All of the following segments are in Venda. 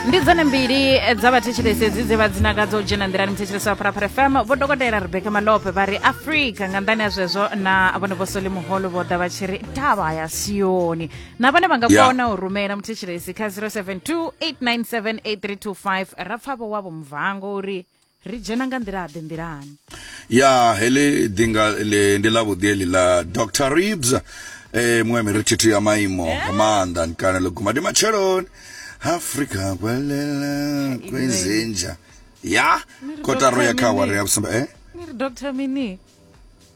ndi dzone mbili dza vhathetshelesi dzi dze vha dzinakadza u dzhena nḓilani muthetshelesi wa pharapara fm vho dokotela rebeka malope vha ri afrika nga nḓani ya zwezwo na vhone vho soli muholo vho ḓa vha tshi ri tavha ya sioni na vhone vha nga Yeah. kona u rumela muthetshelesi kha 072 897 8325 ra pfa vho wavho mvango uri ri dzhena nga nḓila-ḓe nḓilani ya heḽi ḓinga ḽi ndi ḽa vhuḓi heḽi ḽa dr ribs eh, muṅwe miri thithu ya maimo nga maanḓa ni kana ḽo guma ndi matsheloni afrika kwalela kwezinja ya kotaro ya kha awara ya vhusumbe eh ni ri dr mini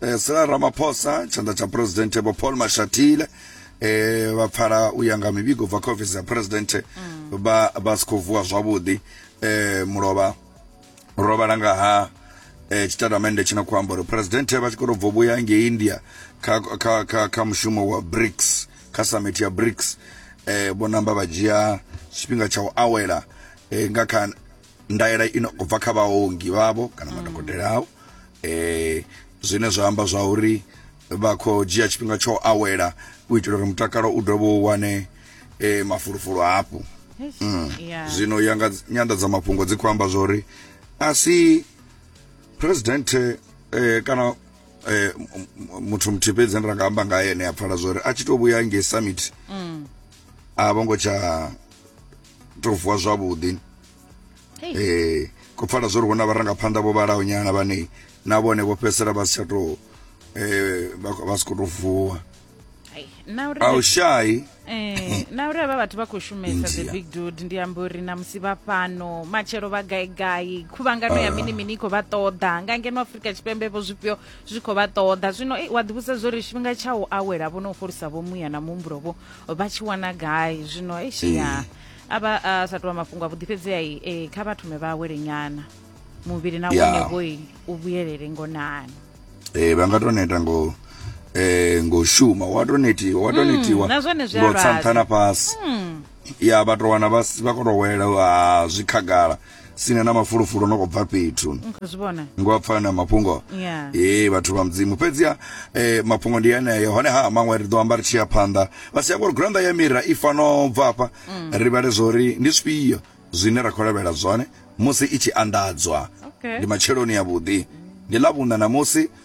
eh, Cyril Ramaphosa tshanḓa tsha president vho Paul Mashatile eh vha pfala u ya nga mivhigo bva kha ofisi ya president mm. vha vha sikho vuwa zwavhuḓi eh mulovha rovhala nga ha eh tshitatamende tshino khou amba uri president vha tshi khou bvo vhuya ngei India kha kha kha kha mushumo wa BRICS kha summit ya BRICS eh vho namba vha dzhia tshifhinga tsha u awela eh nga kha ndaela ino khou bva kha vhaongi vhavho kana madokotela ao eh zwine zwa amba zwa uri vha khou dzhia tshifhinga tsho awela u itela uri mutakalo u dovhe u wane eh mafulufulu hafhu mm. yeah. zwino ya nga nyanḓadzamafhungo dzi khou amba zwa uri a si president eh, kana eh, muthu muthihi fhedzi ra nga amba nga ene a pfala zwa uri a tshi tou vhuya ngei summit mm. a vho ngo tsha to vuwa zwavhuḓi eh ko pfala zwo ri hu na vharangaphanḓa vho vhalaho nyana vhane na vhone vho fhedzisela vha si tsha to eh vha si khou to vuwa a u shayi eh, na uri avha vhathu vha khou shumesa the big dude ndi amba uri na musi vha fhano matshelo vha gai gai khuvhangano ya ah. mini mini i khou vha ṱoḓa nga ngeno afurika tshipembe vho zwifhio zwi khou vha ṱoḓa zwino wa ḓivhusa zwo ri tshifhinga tsha u awela vho no u fholisa vho muya na muhumbulo vho vha tshi wana gai zwino eshia a vha a sa tovha mafhungo a vhuḓifhedzea i e, kha vha thome vha awele nyana muvhili na Yeah. wone vhoi u vhuyelele ngonani eh vha nga to neta ngo eh ngo shuma wa to netiwa wa to netiwa Mm, na zwone zwi a ngo lwadza. tsanthana fhasi ya vha to wana vha si- vha khou to wela ha zwi khagala sina na mafulufulu no bva fhethu mm, zwivhona ngo a pfana mafhungo yeah. ee vhathu vha mudzimu fhedziha eh, mafhungo ndi aneyo hone ha maṅwe ri ḓo amba ri tshi ya phanḓa vha si ya ngori granda ya mira i fano bva afha mm. ri vhale zwori ndi zwifhio zwine ra khou lavhelela zwone musi i tshi anḓadzwa okay. ndi matsheloni ya vhuḓi ndi ḽa vhuna na musi